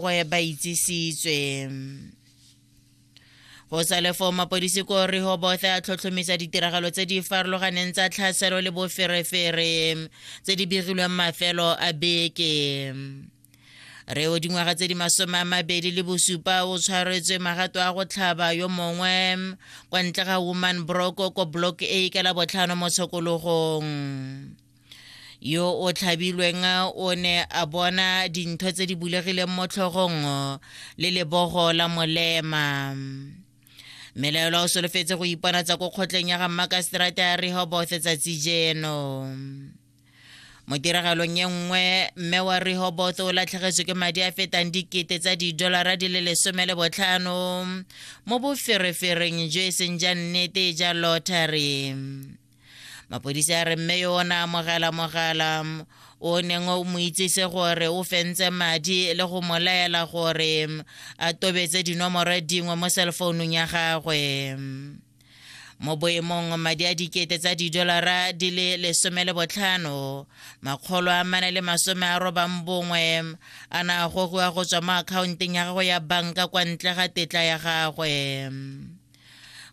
gwe ba itsisitswe go sa le foo mapodisi ko rehobothe a tlhotlhomisa ditiragalo tse di farologaneng tsa tlhaselo le boferefere tse di begilweng mafelo a beke re o dingwaga tse di masome a mabedi le bosupa o tshwaretswe magato a go tlhaba yo mongwe kwa ntle ga woman broko ko block a ka la botlhano mo tshokologong yo o tlhabilweng o ne a bona dintho tse di bulegileng mo tlhogong le lebogo la molema melaelo o solofetse go ipona tsa ko kgotleng ya ga mmakaseterata ya rehoboth tsatsi jeno mo tiragalong e nngwe mme wa rehoboth o latlhegetswe ke madi a fetang dikete tsa didolara di le lesome le botlhano mo boferefereng jo e seng ja nnete ja lottery mapodisa a re mme yo o ne amogela mogala o neng o mo itsise gore o fentse madi le go mo laela gore a tobetse dinomoro dingwe mo cellfounung ya gagwe mo boemong madi a dikete tsa didolara di le lesome le botlhano makgolo a mane le masome a robang bongwe a na a gogiwa go tswa mo akhaonteng ya gagwe ya banka kwa ntle ga tetla ya gagwe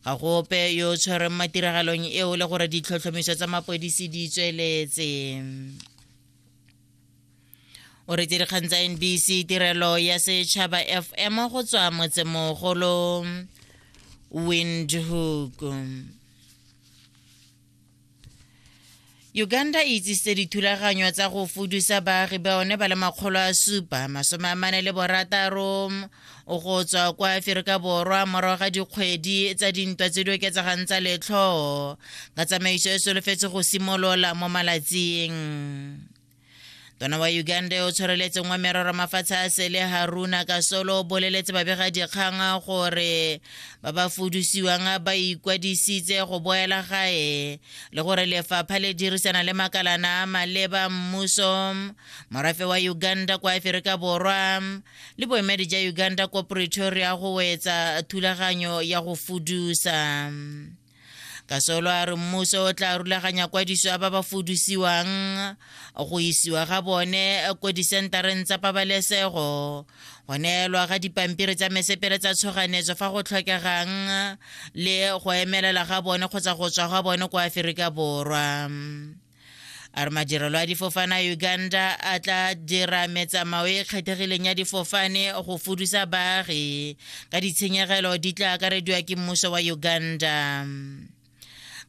ga go ope yo o tshwerweng mo tiragalong eo le gore ditlhotlhomiso tsa mapodisi di tsweletse o retse dikgang tsa nbc tirelo ya setšhaba fm go tswa motsemogolo windhoek uganda e itsisitse dithulaganyo tsa go fudusa baagi ba one ba le makgolo a supa masome a mane le borataro go tswa kwa aferika borwa morago ga dikgwedi tsa dintwa tse di oketsegang tsa letlhoo ka tsamaiso e solofetse go simolola mo malatsing tona wa uganda yo o tshwareletseng wa merero mafatshe a sele haruna ka solo o boleletse babegadikgang gore ba ba fudusiwang ba ikwadisitse go boela gae le gore lefapha le dirisana le makalana a maleba mmuso morafe wa uganda kwa aferika borwa le boemedi ja uganda ko pretoria go wetsa thulaganyo ya go fudusa kasolo a re mmuso o tla rulaganya kwadiso ya ba ba fudusiwang go isiwa ga bone ko disentareng tsa pabalesego go neelwa ga dipampiri tsa mesepele tsa tshoganetso fa go tlhokegang le go emelela ga bone kgotsa go tswa ga bone kwa aferika borwa a re madirelo a difofane a uganda a tla dira metsamao e e kgethegileng ya difofane go fudusa baagi ka ditshenyegelo di tla akarediwa ke mmuso wa uganda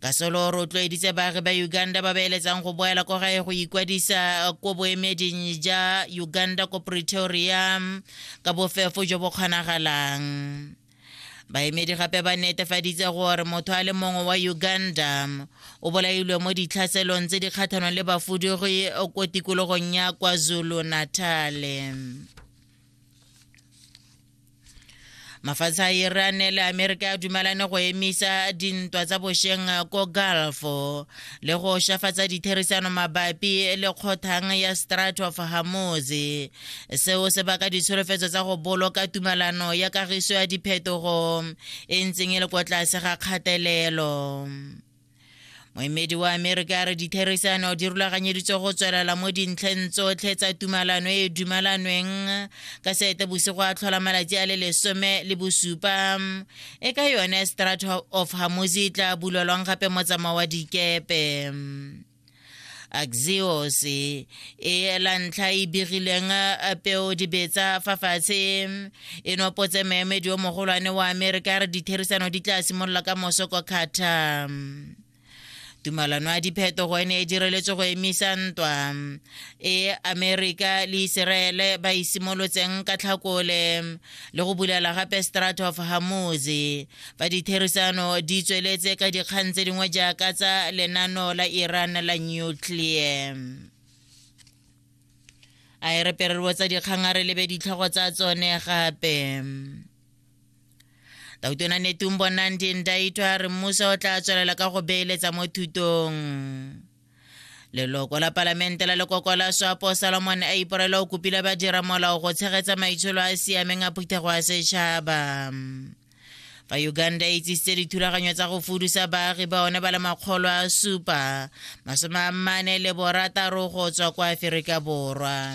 ka solo o rotloeditse baagi ba uganda ba beeletsang go boela ko gae go ikwadisa ko boemeding ja uganda ko pretoria ka bofefo jo bo kgonagalang baemedi gape ba netefaditse gore motho a le mongwe wa uganda o bolailwe mo ditlhaselong tse di kgatlhanong le bafudugi ko tikologong ya kwazulu natale mafatshe a iran le amerika a dumelane go emisa dintwa tsa bošeng ko gulfo le go shafatsa ditherisano mabapi le kgothang ya strat of hamoz seo se baka ditsholofetso tsa go boloka tumalano ya kagiso ya diphetogo e ntseng e le kwa tlase ga kgatelelo moemedi wa amerika a re ditherisano di rulaganyeditswe go tswelela mo dintlheng tsotlhe tsa tumalano e e dumalanweng ka seete bosigo a tlhola malatsi a le lesome le bosupa e ka yone strat of hamusi e tla bulelwang gape motsamao wa dikepe axios e ela ntlha e begileng peo dibetsa fa fatshe e nopotse meemedi yo mogolwane wa amerika re ditherisano di tla simolola ka moso kwa qatar tumalano ya diphetogo e ne e direletswe go emisa ntwa e amerika le iseraele ba e simolotseng ka tlhakole le go bulela gape strat of hamozi fa ditherisano di tsweletse ka dikgang tse dingwe jaaka tsa lenano la iran la nuclear a e re pererwo tsa dikgang a re lebe ditlhogo tsa tsone gape tautona netung bonang dindaitho a re mmuso o tla tswelela ka go beeletsa mo thutong leloko la palamente la lekoko la swapo salomon a iporela o kopile badira molao go tshegetsa maitsholo a a siameng a phuthego ya setšhaba fa uganda e itsisitse dithulaganyo tsa go fudusa baagi ba one ba le makgolo a supa masome a mmane le borataro go tswa kwa aferika borwa